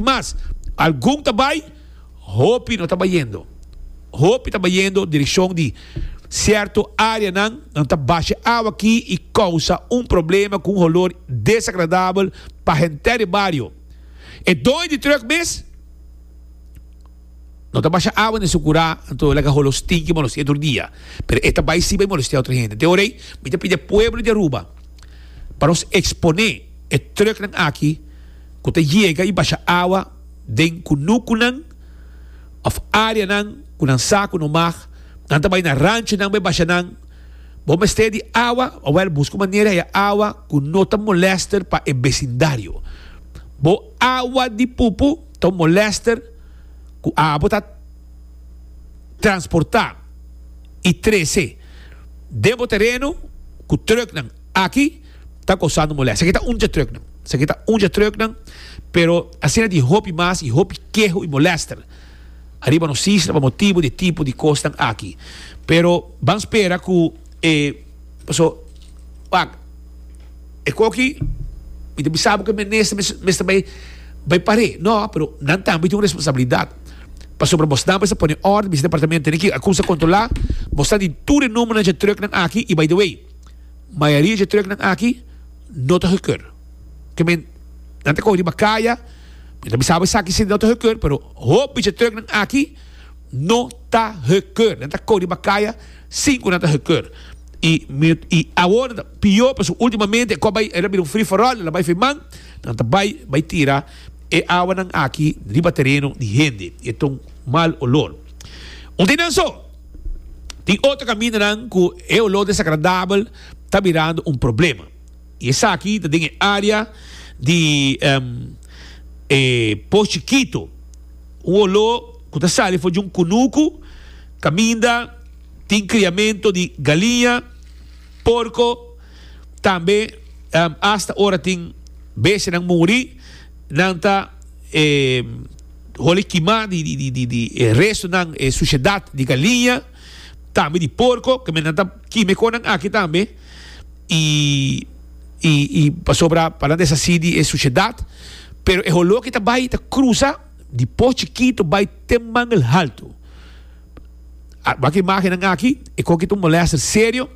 Mas, algun ta bai, hopi no ta bayendo. Hopi ta bayendo direkshon di sierto areanan, nan ta basha awa aki i kousa un problema ku un holor desagradabel pa henter e bario. E doño di trùk mes no ta basha awa den su kurá, anto e laga holo stinki molestia tur dia, pero e ta bai siba i molestia otro hende. Te orei mi ta pidi e pueblo di Aruba pa nos eksponé e trùknan aki, ku ta yega i basha awa den kunukunan òf áreanan ku nan sa ku no mag, nan ta bai na ranchonan bai basha nan. Bo mester di awa, awèl buska un manera e awa ku no ta molèster pa e besindario. Bo awa di pupu ta un molèster ku abo ta transportá i trese den bo tereno ku trùknan. Aki ta kosano molèst. Esaki ta un dje trùknan. Esaki ta un dje trùknan, pero asina di hopi mas i hopi keho i molèster ariba nos isla pa motibu di e tipo di kosnan aki. Pero ban spera ku e, paso, wak, e koki mi ta bisa bo ku e minister mester bai bai par'é. No, pero nan tambe tin un responsabilidat. Pasobra bosnan mester pone òrdu, mi departamento tene ki a kumsa kontrolá, bosnan tin tur e numbernan dje trùknan aki i by the way. Mayoria dje truknan aki no ta gekeur. Ke men nan ta kohe riba kaya, men ta bisa bo esaki si no ta gekeur, pero hopi dje truknan aki no ta gekeur. Nan ta kohe riba kaya sin ku nan ta gekeur. I mi i awor ta pior pasobra ultimamente e kos bai el a bira un free for all, el a bai feman, nan ta bai bai tira e awanan aki riba tereno di hende i e ta un mal olor. Un tin nan so. Tin otro kamindanan ku e oló desagradabel ta birando un problema i esaki ta den e área di e Pos Chikito. Un oló ku ta sali for di un kunuku kaminda tin kriamentu di galiña, porko, tambe asta ora tin bestianan muri nan ta. Holi kimá di e restunan, e sushedat di galiña, tambe di porko, ke men nan ta kima e konan aki tambe, i i pasobra pa nan deshasí di e sushedat, pero e holó ki ta bai ta krusa di Pos Chikitu bai te Mangel Haltu. Wak imágennan aki, e kon ki ta un molèster serio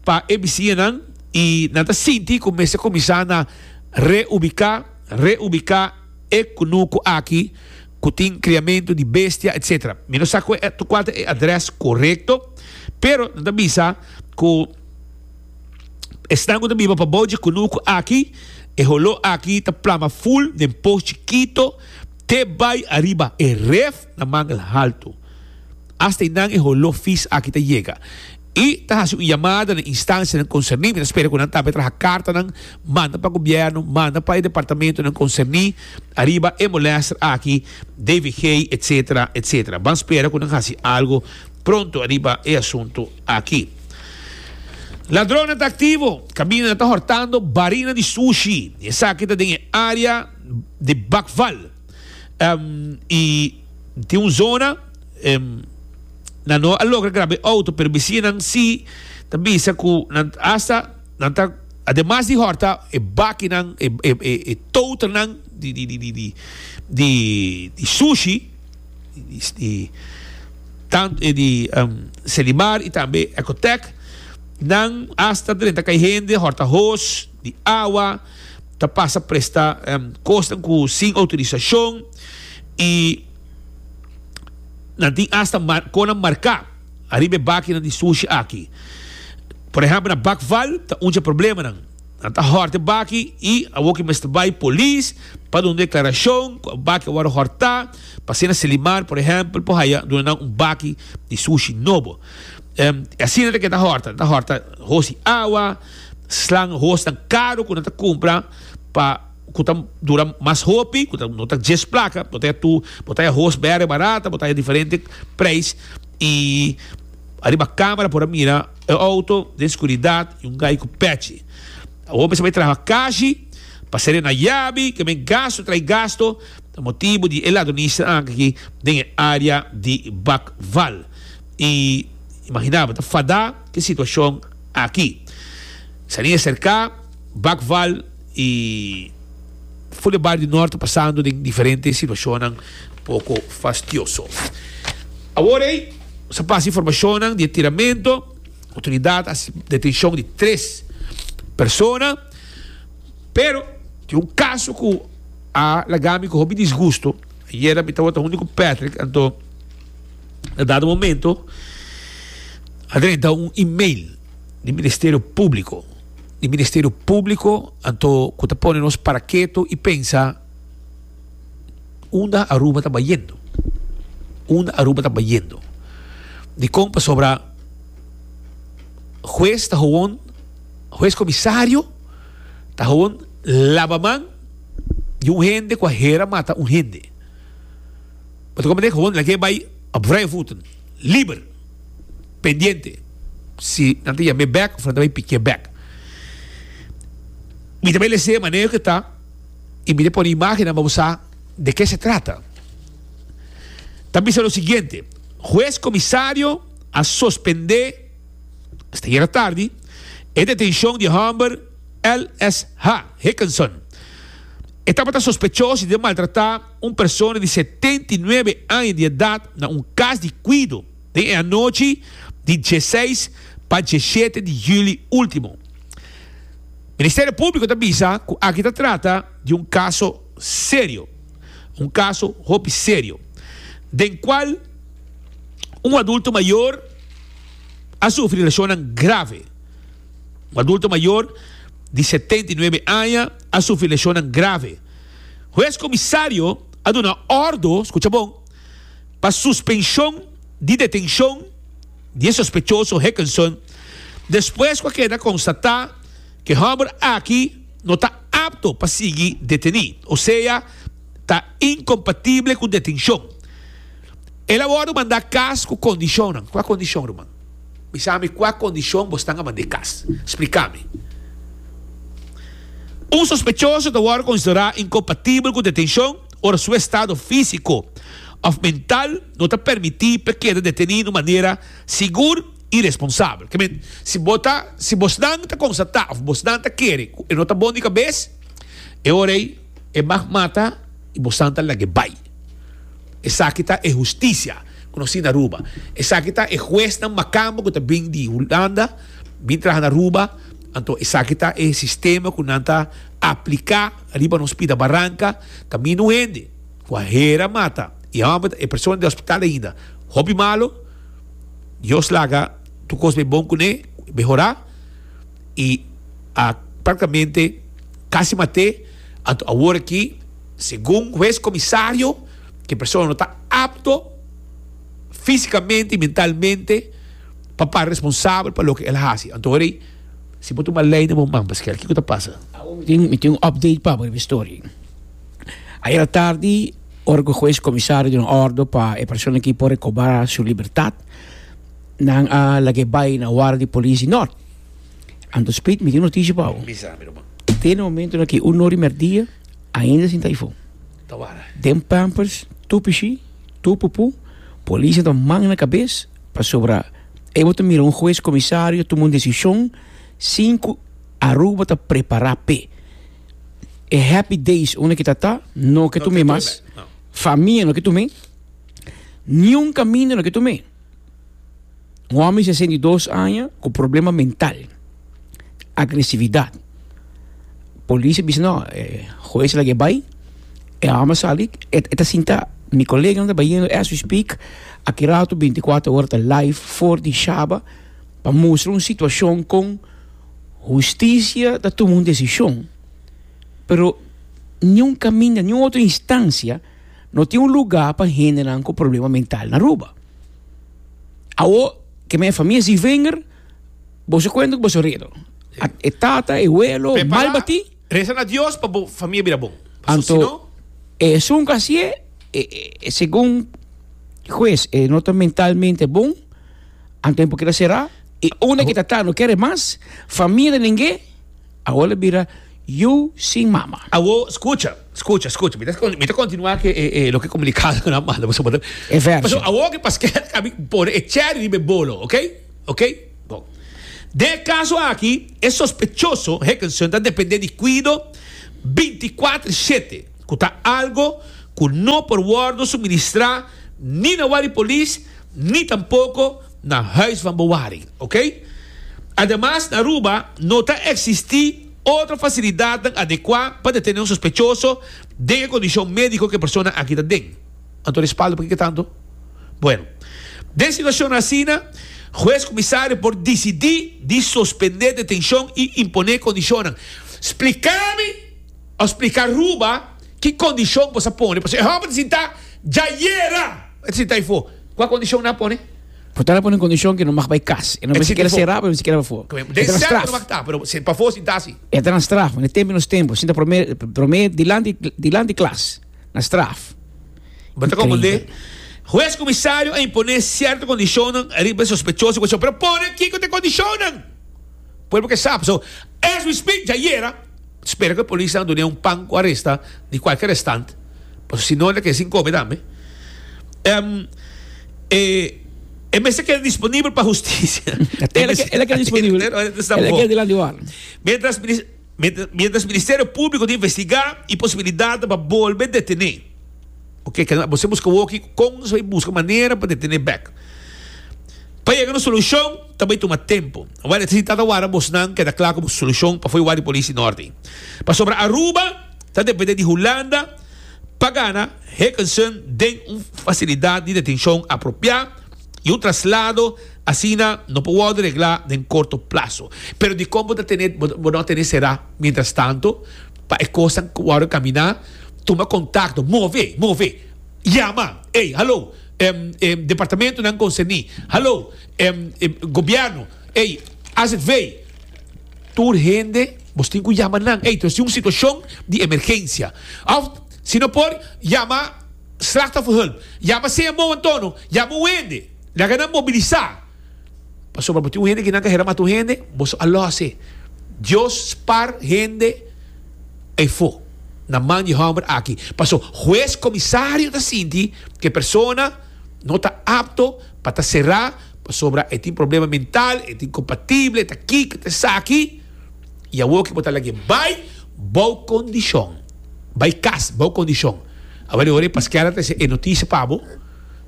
pa e bisiñanan i nan ta sinti ku mester kuminsá na reubiká, reubiká. E kunuku aki ku tin kriamentu di bestia etc. Mi no sa kual ta e adrès korekto, pero nan ta bisa ku esnan ku ta biba pabou dje kunuku aki, e holó aki ta plama ful den pos chikito te bai ariba e ref. na mangel haltu. Asta i nan e holó fis aki ta yega. I ta hasi un yamada na instansianan konserní. Mi ta spera ku nan tambe traha kartanan manda pa gobièrnu, manda pa e departamentunan konserní ariba e molèster aki, DVG, etsetera, etsetera. Ban spera ku nan hasi algu pronto ariba e asuntu aki. Ladronnan ta aktivo, kabinanan ta hòrtando, barinan di sushi, i esaki ta den e área di Bakval. y tin un zona nan no a logra graba e auto pero bisinan si ta bisa cu nan hasta nan ta ademas di horta e bakinan e totanan di di di di di di sushi di tanto e di Selimar y tambe Ecotec nan hasta drenta ca e hende horta hoos di awa ta pasa presta kosnan ku sin outorisashon i nan tin asta konan marká ariba e bakinan di sushi aki. Por ehèmpel na Bakval ta undje problemanan. Nan ta hòrt e baki i awoka e mester bai polis pa duna un deklarashon ku e baki a wòrdu hòrtá pa asina Selimar por ehèmpel por haya duna nan un baki di sushi nobo. Asina ta ke ta hòrta, ta hòrta hosi awa. Slang hoes ta karu ku nan ta kumpra pa ku ta dura mas hopi ku ta no ta djes plaka bo ta haya tur bo ta haya hoes bere barata bo ta haya diferente preis i ariba kamera por a mira e outo den skuridat i un gai ku pèchi awor mester bai traha kashi pa serena yabi ke men gastu trai gastu ta motibu di e ladronista akí aki den e área di Bakval i imaginá bo ta fadá. Tin situacion aki. Salinga Cerca, Bakval y Fule Bario Norte pasando den diferente situacionnan poco fastioso. Awor ey nos a pasa informacionnan di e tiramento. Autoridad a haci detencion di tres persona, pero tin un caso cu a laga mi cu hopi disgusto. Ayer mi tabata hunde cu Patrick anto. Na dado momento a drenta un email di Ministerio Públiko. Di Ministerio Públiko anto ku ta pone nos para ketu i pensa unda Aruba ta bayendo. Unda Aruba ta bayendo. Dikon pasobra hues ta howon, hues komisario ta howon laba man di un hende ku a hera mata un hende. bo ta komete hond lakié bai op vrije voeten, liber, pendiente si nan ta yam'é bèk of nan ta bai pikié bèk. Mi ta bai lese manera ku ta i mi ta pone imágennan pa bo sa de ke se trata. Ta bisa lo siguiente, Hues Komisario a sospendé, esta yera tardi, e detenshon di hòmber LSH. Hickenson. E tabata sospechoso di ta maltratá. Un persona di setenta i nuebe aña di edat na un kas di kuido den e anochi di dieseis pa diesshete di juli último. Ministerio Públiko ta bisa ku aki ta trata di un kaso serio, un kaso hopi serio, den kual un adulto mayor a sufri leshonnan grave. Un adulto mayor di setenta i nuebe aña a sufri leshonnan grave. Hues comisario a duna ordo, scucha bon, pa suspension di detencion di e sospechoso Hickenson despues cu a keda constata cu e homber aki no ta apto pa sigui deteni, osea ta incompatible cu detencion. El a wordo manda cas cu condicionnan. Cu a condicion, ruman? Bisa mi kua kondishon bo stan aman di e kas. Spliká mi. Un sospechoso ta wòrdu konsiderá inkompatibel ku detenshon ora su estado físiko òf mental no ta permití p'e keda detení na un manera sigur i responsabel. Ke men, si bo ta, si bosnan ta konstatá òf bosnan ta kere ku e no ta bon di kabes, e ora ei e mag mata i bosnan ta lag'e bai. Esaki ta e hustisia ku nos tin na Aruba. Esaki ta e huesnan Makambo ku ta bin di Hulanda bin traha na Aruba. Anto esaki ta e sistema ku nan ta apliká riba nos pida baranka. Ta mi no hende ku a hera mata i hòmber ta e persona di hospital ainda. Hopi malu. Dios laga tur kos bai bon kuné, mehorá. I a praktikamente kasi mat'é. Anto awor aki. Segun hues comisario ki persona no ta apto fisicamente y mentalmente pa para responsabel pa loke el a haci. Anto Rey, si bo tuma ley na bo man pa eskel kico ta pasa? Awo mi tin mi tin un update pa bo riba e story. Ayer atardi ora cu hues comisario a duna ordo pa e persona ki por recoba su libertad nan a lague bay na ward di policia North. Anto Speed mi tin un noticia pa bo. Te na momento na ki uno di merdia. Ainda sin ta ifo. Den pampers tur pishi, tur pupu, polisnan ta mang na kabes pasobra e bo ta mira un hues komisario tuma un desishon sin ku Aruba ta prepará p'e. E happy days unda ke tata no ke tum'e mas, famia no ke tum'e, niun kaminda no ke tum'e. Un hòmber di sesenta i dos aña ku problema mental, agresividat. Polis a bisa no, e hues a laga e bai, e hòmber a sali, e ta sinta. Mi koleganan ta bahiendo as we speak, aki rato binti kuater ora ta live for di shaba pa mustra un situashon kon hustisia ta tuma un desishon pero niun kaminda, niun otro instancia. No tin un lugá pa hendenan ku problema mental na Aruba. Awo ke men e famia Zievinger, bo sa kuenta ku bo sa redo. A, e tata, e welo, mal Prepará, batí. resa na Dios pa bo famia bira bon. Pasobra Anto, si no, e esun ku hasié, e, e, e segun hues, e no ta mentalmente bon, anto e por keda será. I unda ke tata no kere mas, famia ta dengé, Awo lo bira yu sin mama. Awo skucha, skucha, skucha. Mi ta kontinuá ku e loke komunikado nan manda pasobra ta. E vèrsio. Pasobra awo ku Pasquet a bin pone e chèri riba e bolo, okey? Okey? Bon. Den e kaso aki, e sospechoso, Higginson, ta dependé di kuido bintikwatro shete, ku ta algo ku no por wòrdu suministrá ni na wak di polis ni tampoko na huis van bewaring, ok. Ademas na Aruba no ta existi otro facilidadnan adecua pa detene un sospechoso den e condicion medico cu e persona aki ta den. Anto respaldo pa kico tanto? Bueno, den situacion asina, hues comisario por dicidi di suspende detencion y impone condicionnan. Splica mi of splica Aruba ki condicion bo sa pone, pasobra e homber ta sinta dja yera. E si ta ifo, kua kondishon nan a pone? Purtá nan a pone un kondishon ke no mag bai kas. E no mester keda será pero mester keda pafó. Den sèlter no mag ta, pero pafó si ta si. E ta na straf, na e tempu i nos tempu. Sinta promé, promé dilanti, dilanti klas. Na straf. Bo ta komprendé? Hues kumisario a imponé sierto kondishonnan riba e sospechoso i kushon, pero pone kiko ta e kondishonnan? Pueblo ke sa. So, as we speak djayera. Spera cu polis nan dun'e un pan cu aresta di cualkier estand, pasobra si no lo keda sin come tambe. E mester keda disponibel pa husticia. E lo keda disponibel. E lo keda dilanti bo awe. Mientras Ministerio Publico ta investiga e posibilidad pa bolbe detene. Ok kende mas bo ser buska woki kon nos bai buska manera pa detene bek pa yega nos solushon ta bai tuma tempu awor e ta si tata wara abosnan keda kla ku bo solushon pafui wak di polisi norte pasobra Aruba ta depende di Hulanda pa gana Heukenson den un fasilidat di detenshon apropiá i un traslado asina no por wòrdu reglá den korto plaso pero dikon bo ta tene bo no a tene será mientras tanto pa e kosnan wòrdu kaminá. Tuma kontakto, move, move. Yama, ey, halo, em, em, departamentunan konserní, halo, em, em, gobièrnu, ey, azv. Tur hende bos tin ku yama nan, ey, tras di un situashon di emergensia. Òf, si no por, yama slachtofferhulp, yama sea mou antono, yama un hende, laga nan mobilisá. Pasobra bo tin un hende ki nan ta hera mata un hende, boso a lòs e. Dios spar hende. E fo na man di homber aki paso hues comisario ta sinti cu e persona no ta apto pa ta sera pasobra e tin problema mental, e ta incompatible, e ta kiko, e ta esaki, y awor cu bo ta lag'e bay bo condicion, bay cas bo condicion, awor e ora e pasquear a trece e noticia pa bo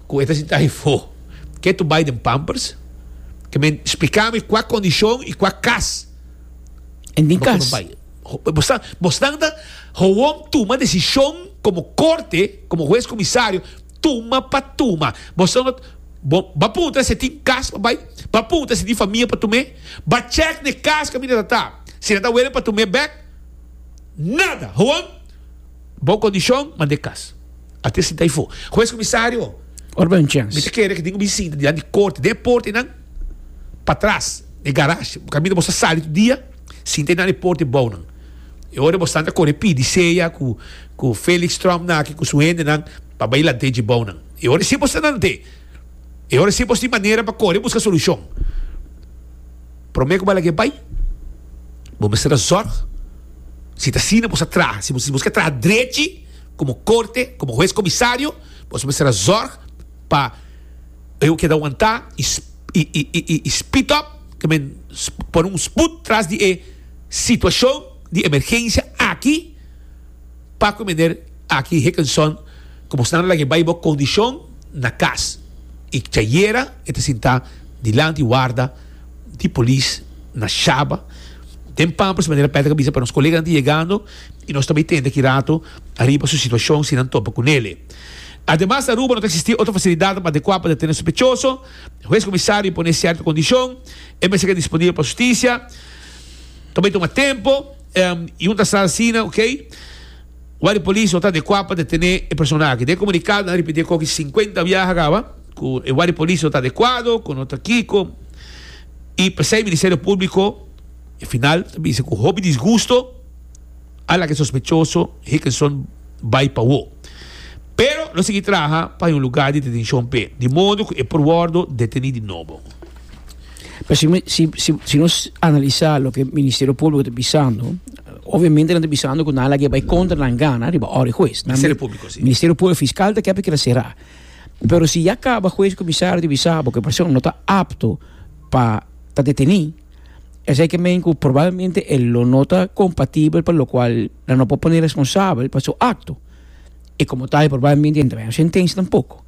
cu e ta sinti ahi fo, ke tu bay den pampers? Ke men splica mi cua condicion y cua cas bo ta bay? Bosnan ta gewoon tuma desishon komo korte, komo hues komisario, tuma pa tuma. Bosnan lo bo ba punta si e tin kas pa bai, ba punta si e tin famia pa tum'é, ba chèk n'e kas kaminda ta ta, si nan ta wele pa tum'é bèk, nada! Gewoon bon kondishon, manda e kas. A tes sinta ifo. Hues komisario, mi ta kere ku tin ku mi sinta dilanti di korte, den e porta einan, patras, den e garash, kaminda boso a sali tur dia. Sinta e na deporte e bou nan. E ora bo stanta kore pidi sea ku ku Felix Trump nan aki ku su hende nan pa bai lant'e dje bou nan. E ora si bo sta lant'e. E ora si bo tin manera pa kore buska solushon. Prome ku Balaguer bai bo mester ta zorg si ta asina bo sa traha. Si bo ske traha drechi komo korte komo hues komisario bo mester ta zorg pa. Bo yo keda wantá i speed up ta men pone un sput tras di e situashon di emergensia aki pa ku meneer aki Hickenson ku bo snan a laga e bai bo kondishon na kas i chayera e ta sintá dilanti warda di polis na Shaba den Pampers manera Patrick a bisa pa nos koleganan ta yegando i nos ta bai tende aki rato ariba su situashon si nan topa ku nele. Ademas na Aruba no ta existi otro facilidanan adecua pa detene sopechoso. E huez comisario impone cierto condicion. E mester keda disponibel pa husticia. Ta bay tuma tempo. Y un ta sa asina, ok. Wak di polis no ta adecua pa detene e persona aki. Den e comunicado nan a repiti e coge cincuenta biaha caba cu e wak di polis no ta adecuado, cu no ta kico. Y pesey Ministerio Publico e final ta bisa cu hopi disgusto. Ala ke sospechoso Hickenson bai pa wou. Pero lo sigui traha pa e un lugá di detenshon p'e, di modo ku e por wòrdu detení di nobo. Pero si mi, si, si, si nos analisá loke Ministerio Públiko ta bisando, obviamente nan ta bisando ku nan a laga e bai kontra nan gana riba òrda e hues. Nan, Ministerio Públiko, si. Ministerio Públiko, fiskal ta kèp e keda será. Pero si ya kaba hues, komisario ta bisá bo ku e persona no ta apto pa ta detení, Esei ke men ku probablmente e lo no ta kompatibel pa lokual nan no por pone responsabel pa su akto. I komo tal probablmente no ta bini sentensia tampoko.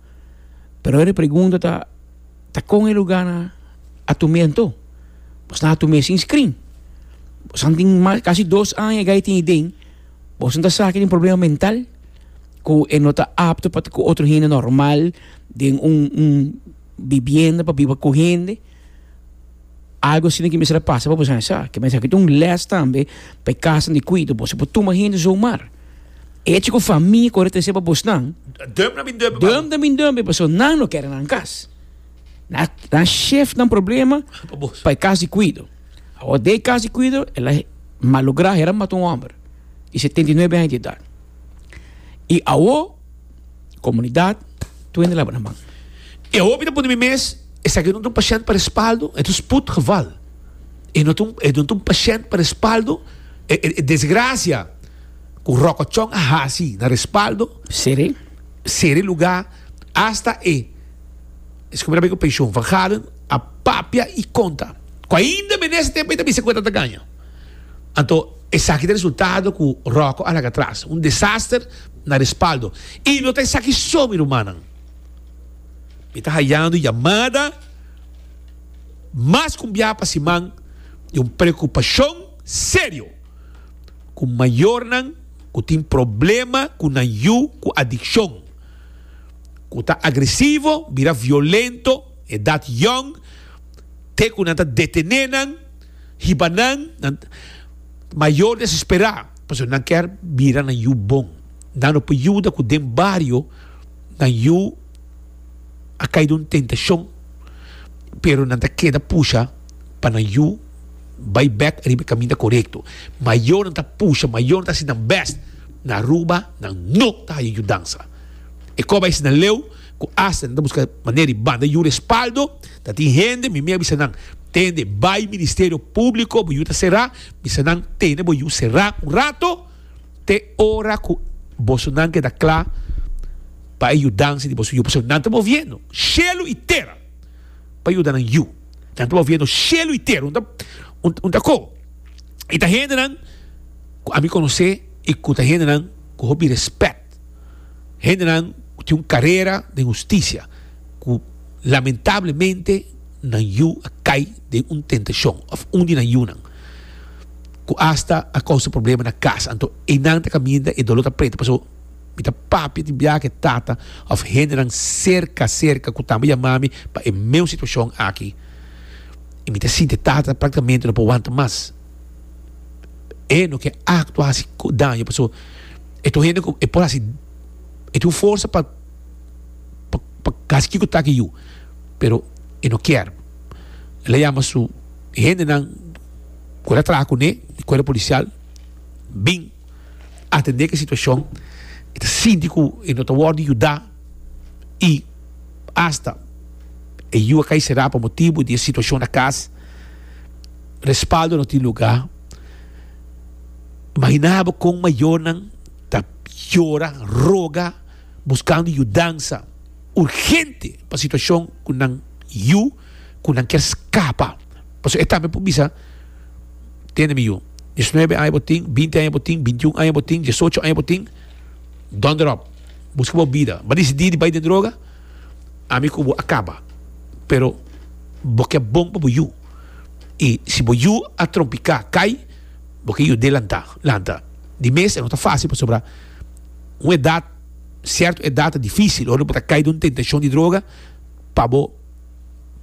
Pero ahora e pregunta ta, ta kon e lugana a tum'é anto? Boso nan a tum'é sin screen? Boso nan tin mas kasi dos aña ga e tin iden, boso nan ta sa ke tin problema mental ku e no ta apto pa ku otro hende normal den un un bibienda pa biba ku hende? Algu asina ki mester a pasa pa boso hende sa. Mester aki ta un les tambe pa e kasanan di Quito. Boso no por tuma hende zomaar. Echi ku famia kore trese pa bosnan, Dum na bin dum. dum na bin dum, paso nan no kere nan kas. Nan a shift nan problema pa e kas di Quito. Awor den e kas di Quito el a malogra, hera mata un homber di setenta i nuebe aña di edat. I awor. Comunidad, tu hende laba nan man. E hopi ta pone mi mes, esaki no ta un pashent pa respaldo, e ta un spoedgeval. E no ta e no ta un pashent pa respaldo, e e desgracia cu rokochon a hasi na respaldo, Sere. sere luga, hasta e esaki mi ta bay cu pension van Galen a papia y conta cu ainda menester pa e ta bisa cu e ta ta gana. Anto esaki ta resultado cu Rocco a laga tras. Un desaster na respaldo. Y no ta esaki so mi rumannan. Mi ta hayando yamada mas cumbia pa siman di un preocupacion serio cu mayornan cu tin problema cu nan yu cu adiccion, cu ta agresivo, bira violento, edad yong, te cu nan ta detene nan. hiba nan, nan ta mayor desesperá pasobra nan ker bira nan yu bon. Nan lo por yuda ku den bario nan yu a kai den un tentashon, pero nan ta keda pusha pa nan yu bai bèk riba e kaminda korekto. Mayor nan ta pusha, mayor nan ta hasi nan bèst na Aruba nan no ta haya yudansa. E kòba ese nan leu. cu asta nan ta busca manera di banda yu respaldo, ta tin hende, mi mi a bisa nan, tende bay Ministerio Publico, bo yu ta cera, bisa nan tene bo yu cera un rato, te ora cu bosonan keda cla pa e yudanshi di boso yu, pasobra nan ta moviendo shelu y tera pa yuda nan yu, nan ta moviendo shelu y tera, un ta un ta cobo, y ta hendenan cu ami conoce y cu ta hendenan cu hopi respect. Tet. Hendenan cu tin un carera den husticia cu lamentablemente nan yu a cay den un tentacion of un di nan yunan cu hasta a causa problema na cas anto enan ta caminda e dolor ta prete paso mi ta papia di biaha cu e tata of hendenan cerca cerca cu tambe yama mi pa e meun situacion aki y mi ta sinti e tata practicamente no por wanta mas e no ke actua haci daño paso. E ta un hende ku e por hasi, e tin un forsa pa pa kasi kiko ta aki yu, pero e no kier. El a yama su hendenan ku el a traha kuné, e kuerpo polisial, bin atendé ku e situashon. E ta sinti ku e no ta wòrdu yuda i asta e yu a kai será pa motibu di e situashon na kas. Respaldo no tin lugá. Imaginá bo kon mayornan ta yora, roga, buskando yudansa urgente pa situashon ku nan yu, ku nan kier skapa. Pasobra e tambe por bisa, Tende mi yu, diesnuebe aña bo tin, binti aña bo tin, bintiun aña bo tin, diesocho aña bo tin, dònde ròp? Buska bo bida. Bo a disidí di bai den droga? Ami ku bo a kaba, pero bo ke bon pa bo yu. i si bo yu a trompiká kai bo ke yu dé lantá lanta di mes e no ta fásil pasobra un edat sierto edat ta difícil ora bo ta kai den un tentashon di droga pa bo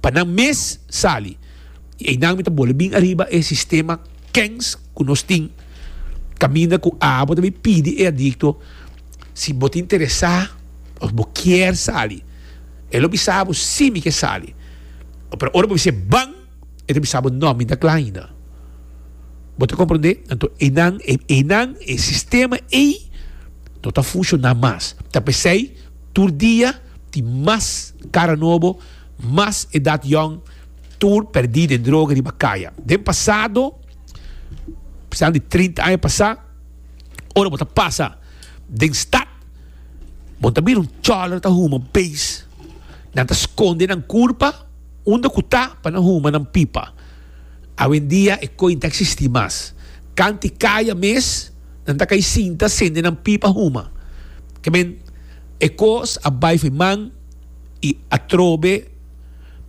pa nan mes sali i einan mi ta bole bin ariba e sistema kens ku nos tin kaminda ku a bo ta bin pidi e adikto si bo ta interesá òf bo kier sali e lo bisa bo si mi ke sali. Pero ora bo bisa ban, e ta bisa bo no, mi ta kla ainda. Bo ta komprondé? Anto einan, e einan, e sistema ei no ta funshoná mas. Ta p'esei tur dia tin mas kara nobo, mas edat yòn tur pèrdí den droga riba kaya. Den pasado, p'esnan di trinta aña pasá, ora bo ta pasa den stat, Bo ta mira un chòlere ta huma un pees. Nan ta skonde nan kurpa unda ku ta pa nan huma nan pipa. Awendia e koi ta eksistí mas. Kanti kaya mes nan ta kai sinta sende nan pipa huma. Kemen e kos a bai for man i atrobe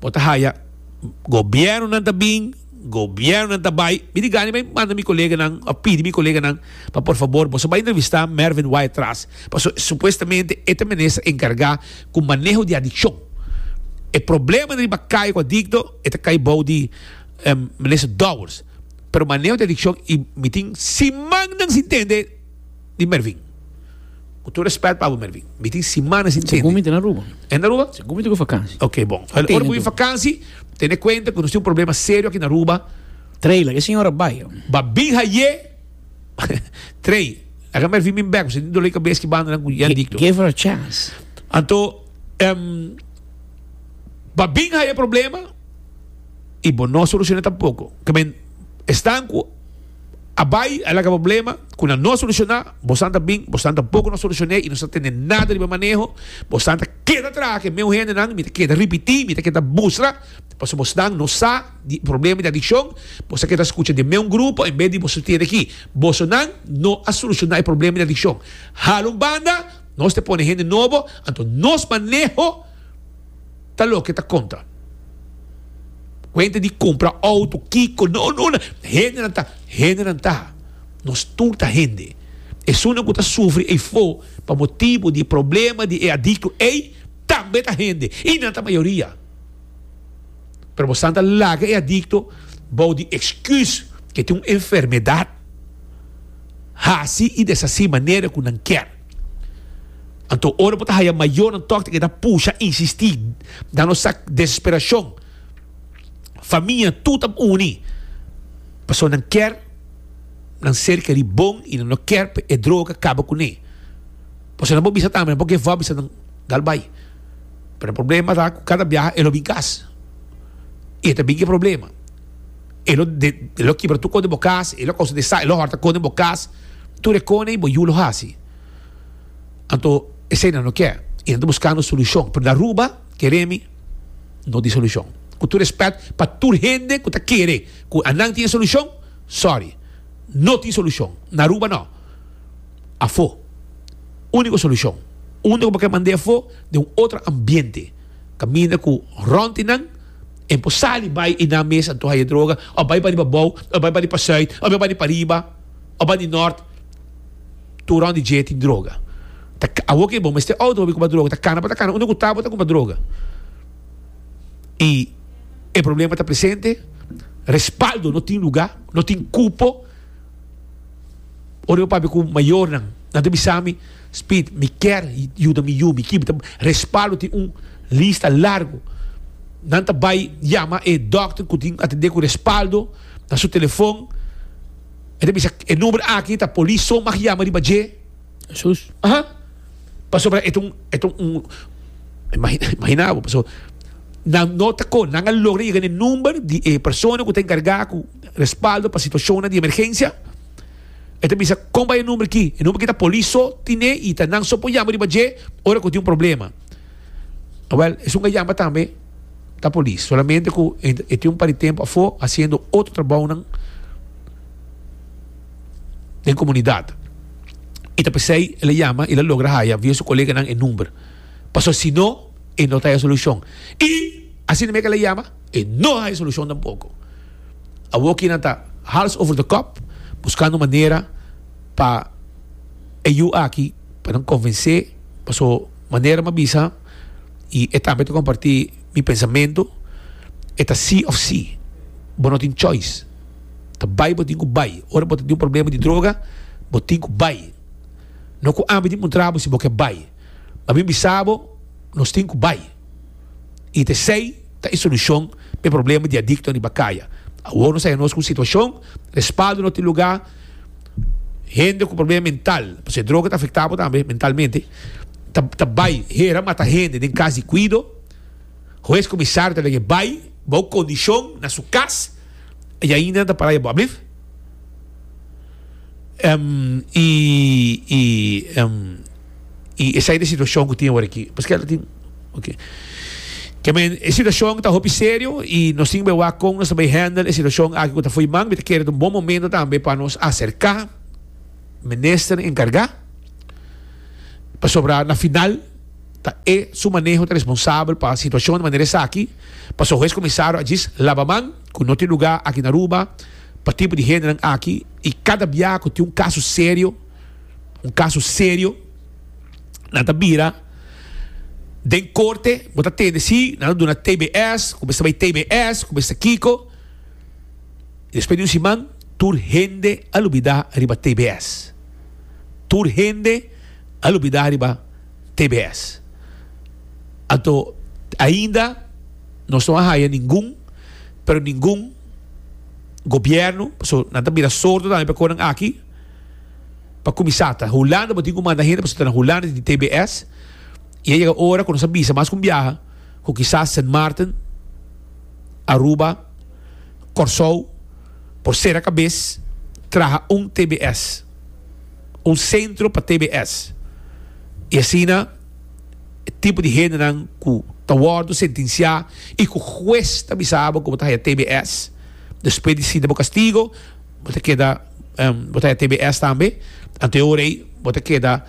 bo ta haya gobièrnunan ta bin. Gobiernonan ta bai. Mi di gana bai manda mi koleganan of pidi mi koleganan pa por fabor boso bai entrevista Mervin Wai Tras paso supuestamente e ta minister encarga cu maneho di adiccion. E probleman riba cayo cu adicto e ta cay bao di minister Dowers pero maneho di adiccion y mi tin simannan sin tende. Di Mervin. Ku tur respet pa bo Mervin. Mi tin simana sin tende. Segun mi ta na Aruba. E na Aruba? Segun mi ta ku vakansi. Ok bon. Ora ku bo yu vakansi tene kuenta ku nos tin un problema serio aki na Aruba. Trey la e señora bai. Ba bin haye Trey. Laga Mervin bin bek pasobra tin dolor di kabes ki bandanan ku Jan Diclo. Give her a chance. Anto ba bin haye problema i bo no solushona tampoko. Ke men esnan ku. a bai a laga problema cu nan no a soluciona, bosnan ta bin, bosnan ta bo cu nos solucion'e y nos ta tende nada riba maneho, bosnan ta keda traha cu e meu hendenan, mi ta keda ripiti, mi ta keda mustra, pasobra bosnan no sa di e problema di adiccion, bos ta keda scucha di e meu grupo en bes di boso tiene ki bosonan no a soluciona e problema di adiccion, hala un banda nos ta pone hende nobo, anto nos maneho. ta loke ta kontra. Kuenta di kumpra outo, kiko, no, no, no. Hendenan ta, hendenan ta. Nos tur ta hende. Esunnan ku ta sufri eifo pa motibu di e problema di e adikto ei tambe ta hende, i nan ta mayoria. Pero bosnan ta laga e adikto bou di eksküs ku e tin un enfermedat, hasi i deshasi manera ku nan kier. Anto, ora bo ta haya mayornan tòg ta keda pusha, insistí, dando esak desesperashon. Famia tur ta uni pasobra nan ker nan serka di bon i nan no ker pa e droga kaba kuné. Por eso nan por bisa tambe, nan por give up bisa nan dal bai. Pero e problema ta ku kada biaha e lo bin kas i e ta bin ku e problema. e lo de, e lo kibra tur kon den bo kas, e lo kousa desa, e lo hòrta kon den bo kas, tur e kone i bo yu lo hasi. Anto eseinan lo ke i nan ta buskando solushon, pero na Aruba, kere mi, no tin solushon. Ku tur rèspèt pa tur hende ku ta kere ku anan tin e solushon, sòri, no tin solushon, na Aruba no. Afo, úniko solushon, unda ku bo ke mand'é afo, den un otro ambiente, kaminda ku rònti nan, E por sali bai y nan mes a antoha e droga, of bai pariba bou, of bai pari pa suid, of bai pari pariba, of bai di nort, tur rond di dje tin droga. Ta ka, awor ke bo mester oud hopi kumpa droga, ta kana bo ta kana, unda ku ta bo ta kumpa droga. Y e problema ta presente, respaldo no tin luga, no tin cupo, ora bo papia ku mayornan, nan ta bisa mi, Speed, Mi kier yuda mi yu, mi kibi ta respaldo tin un lista largo. Nan ta bai yama e dokter ku tin atendé ku respaldo na su telefon. E ta bisa e number aki ta polis so mag yama riba dje. Jesus. Aha, pasobra e ta un, e ta un, imagina, imagina bo, paso nan no ta kon, nan a logra yega na e number di e persona ku ta enkargá ku respaldo pa situashonnan di emergensia. E ta bisa, Kon bai e number ki? E number ki ta polis so tine i ta nan so por yama riba dje ora ku tin un problema. Wèl, esun a yama tambe ta polis, solamente ku e tin un par di tempu afó hasiendo otro trabounan den komunidat. I ta p'esei el a yama, el a logra haya via su koleganan e number, pasobra si no e no ta haya solushon. I asina mesmu ku el a yama, e no haya solushon tampoko. Awor ki nan ta hals over the kòp buskando manera pa e yu aki pa nan konvensé paso manera m'a bisa i e tambe ta kompartí mi pensamentu e ta sí òf sí bo no tin chòis ta bai bo tin ku bai ora bo ta tin un problema di droga bo tin ku bai no ku ami tin puntrabo si bo ke bai ma mi bisa bo nos tin ku bai. i ta esei ta e solushon pa e problema di adiktonan riba kaya. Awor nos a haya nos ku un situashon respaldo no tin lugá, hende ku problema mental, pasobra e droga ta afektá bo tambe mentalmente, ta ta bai hera mata hende den kas di kuido, hues kumisario ta lege bai bou kondishon na su kas, i ainda nan ta pará ya bo ablift. i i i esai ta e situacion cu tin awor aki paskei ta tin ok kier mi e situacion ta hopi serio i nos tin be wak con nos ta bay handle e situacion aki cu ta foey man mi ta kere ta un bon momento tambe pa nos acerca minister encarga pasobra na final ta e su maneho ta responsable pa situacion manera esaki paso hoy es comisario a djis laba man cu no tin lugar aki na Aruba Pa tipo di hendenan aki y cada bia cu tin un caso serio, un caso serio, nan ta bira den corte, bo ta tende si nan lo duna tbs, cu mester bay tbs, cu mester kico, y despues di un siman tur hende a lubida riba tbs, tur hende a lubida riba tbs. Anto ainda nos no a haya ningun, pero ningun. gobierno paso nan ta bira sordo tambe pa conan aki pa cuminsa ta Hulanda bo tin cu manda hende paso ta na Hulanda tin TBS y a yega ora cu nos a bisa mas con biaha cu kisas Sint Maarten Aruba Corsou por sera cabes traha un TBS un centro pa TBS y asina e tipo di hendenan ku ta wòrdu sentensiá i ku hues ta bisa bo ku bo ta haya tbs. Despues di sinti bo kastigo bo ta keda bo ta haya tbs tambe, anto e ora ei bo ta keda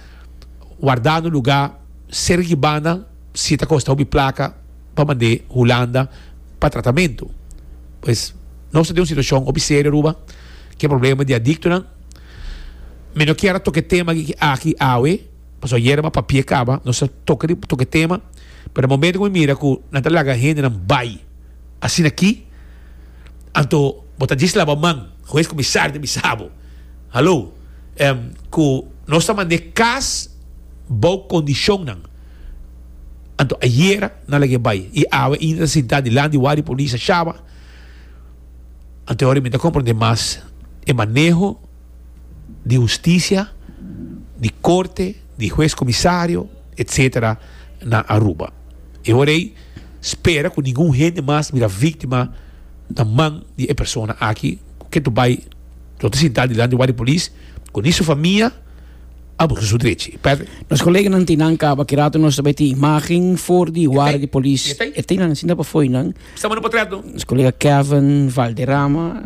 wardá na un lugá serka ki banda si ta kosta hopi plaka pa mand'é Hulanda pa tratamentu. Pues nos ta den un situashon hopi serio Aruba, ku e problema di adiktonan. Mi no kier a toka e tema aki awe. Pasobra yerba pa pie caba nos ta toca di toque tema pero momento cu mi mira cu nan ta laga hendenan bay asina aki anto bo ta djis laba man hues comisario ta bisa bo halo cu nos ta mande cas bou condicionnan anto ayer nan lag'e bay y awe ta ainda sinta dilanti di wak di polis a shaba anto mi ta comprende mas e maneho di husticia, di corte, di huez comisario etcetera na Aruba. E hora ey spera cu ningun hende mas bira victima na man di e persona aki cu ke tu bay lo ta sinta dilanti wak di polis cu ni su famia a busca su drechi. Patrick. Nos coleganan tin nan caba, ki rato nos ta bay tin imagen for di wara di polis, e tin nan sinta pafoinan. Sa mano potret no. Nos colega Kevin Valderrama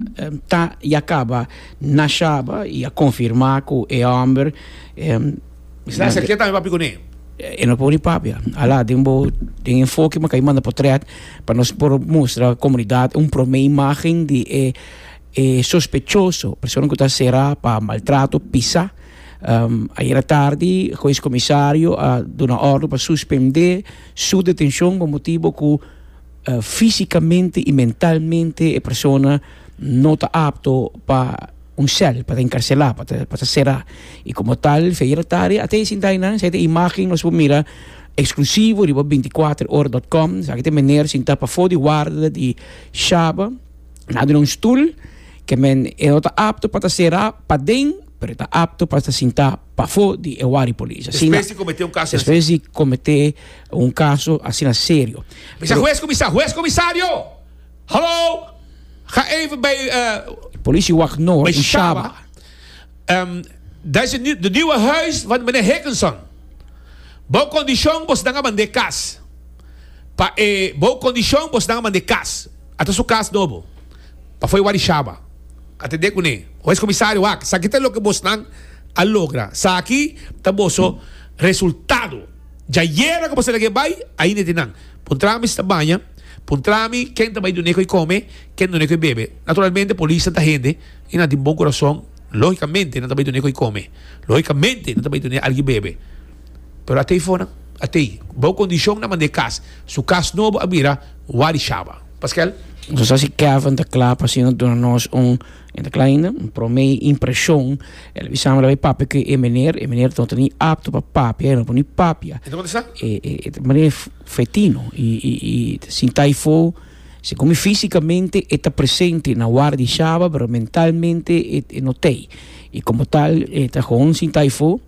ta y a caba na Shaba y a confirma cu e homber Mester a serkia tambe papi cu ne. E no por ni papia. A la den bo den enfoke maka y manda potret pa nos por mustra comunidad un prome imagen di e e sospechoso, persona cu ta cera pa maltrato, pisa. Ayer a tardi Hues Comisario a duna ordo pa suspende su detencion pa motibo cu. Físikamente i mentalmente e persona no ta apto pa un sèl, pa ta enkarselá, pa ta pa ta será. I komo tal, Feirotari a ta hasi dai nan, esaki ta imágen nos por mira eksklusivo riba binticuatrohora dòt kòm, esaki ta e meneer sintá pafó di warda di Shaba, lado di un stul, ke men e no ta apto pa ta será paden, pero e ta apto pa ta sintá. pafó di e wari polis. Asina, Despues di kometé un kaso asina despues di kometé un kaso asina serio. Bisa, Pero, Hues Komisar, Hues Komisario! Hallo! Ga even bij, eh, Politie Wacht Noord bij in Shaba. Shaba. Ehm, dat is de, nie- de nieuwe huis van meneer Hickinson. Bou condition bos nan a mandé kas. Pa e bou condition bos nan a mandé kas. Ata su kas nobo. Pafoi wak di shaba. A tende kuné. Hues komisario wak. Saki ta loke bosnan a logra. Saki ta boso resultado. Dja yera ku boso lag'é bai, ainda e tin nan. Puntra mi si ta baña. Puntra mi ken ta bai dun'é ku e kome, ken dun'é ku e bebe. Naturalmente polisnan ta hende i nan tin bon kurason. Lógikamente nan ta bai dun'é ku e kome. Lógikamente nan ta bai dun'é algi bebe. Pero a tei fonan. A tei. Bou kondishon nan mand'é kas. Su kas nobo a bira wak di shaba. Paskel. Nos ta si Kevin ta kla pa asina duna nos un, e ta kla ainda, un prome impreshon. El a bisa mi, Lo bai papia ku e meneer. E meneer no ta ni apto pa papia, e no por ni papia. E ta kontestá. E, e, e ta mira fetino, i, i, i ta sinta ifo, segun mi físikamente e ta presente na war di shaba, pero mentalmente e, e no t'ei. I como tal e ta gewoon sinta ifo.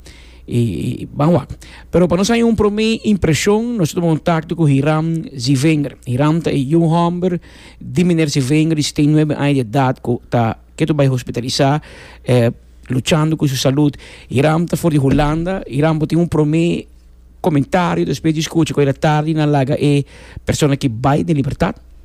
I ban wak. Pero pa nos haña un promé impreshon, nos a tuma kontakto ku Hiram Zivinger. Hiram ta e yu hòmber di Miner Zivinger di setenta i nuebe aña di edat ku ta ke tur bai hospitalisá luchando ku su salut. Hiram ta for di Hulanda. Hiram por tin un promé komentario despues di skucha ku el a tardi na laga e persona ki bai den libertat?